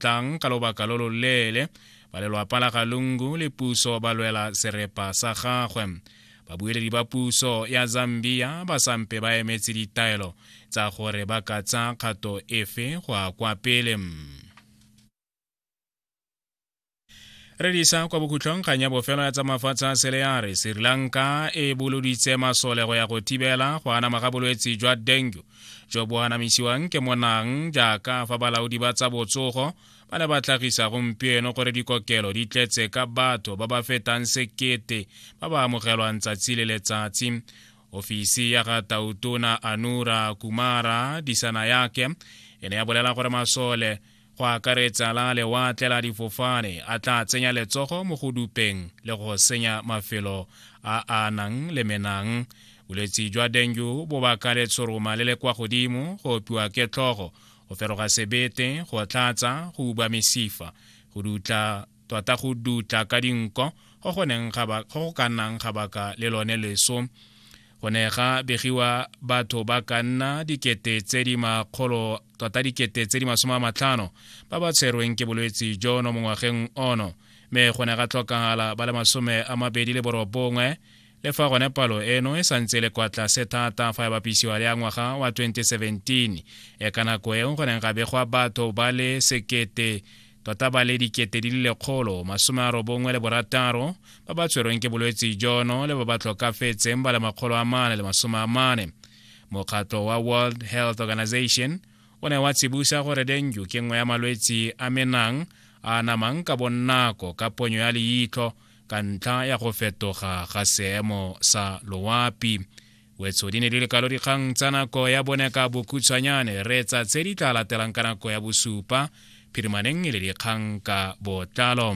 tlang ka lobaka lo loleele ba lelwapa la galungu le puso ba lwela serepa sa gagwe babueledi ba puso ya zambia ba sampe ba emetse ditaelo tsa gore ba ka tsa kgato efe go a kwa pele re disa kwa bokhutlhong kgang ya bofelo ya tsa mafatshe a sele ya re sri lanka e boloditse masole go ya go thibela go anama ga bolwetse jwa dengue jo bo anamisiwang ke monang jaaka fa balaodi ba tsa botsogo ba ne ba tlhagisa gompieno gore dikokelo di tletse ka batho ba ba fetang sekete ba ba amogelwang tsatsi le letsatsi ofisi ya ga tautona anura kumara disana yake e ne ya bolela gore masole go akaretsa la lewatle la difofane a tla tsenya letsogo mo go dupeng le go senya mafelo a a nang le menang bolwetsi jwa dengu bo baka letshoroma le le kwa godimo go opiwa ke tlhogo go feroga sebete go tlatsa go uba mesifa go dutla tota go dutla ka dinko go go ka nnang ga baka le lone leso go ne ga begiwa batho ba ka nna dikete tse di makgolo tota dikete tse di masome a matlhano ba ba tshwerweng ke bolwetse jono mo ngwageng ono mme go ne ga tlhokagala ba le masome a mabedi le borobongwe le fa gone palo eno e santse e le kwa tlase thata fa e bapisiwa le ya ngwaga wa 2017 e ka nako eo go neng ga begwa batho ba le sekete tota ba le dikete di le lekgolo masome a robongwe le borataro ba ba tshwerweng ke bolwetse jono le ba ba tlhokafetseng ba le makgolo a mane le masome a mane mokgatlo wa world health organization o ne wa tsibusa gore denju ke nngwe ya malwetsi a menang a namang ka bonnako ka ponyo ya leitlho ka ntlha ya go fetoga ga seemo sa loapi wetso di ne di lekalo dikgang tsa nako ya bone ka bokhutshwanyane reetsa tse di tla latelang ka nako ya bosupa phirimaneng e le dikgang ka botlalo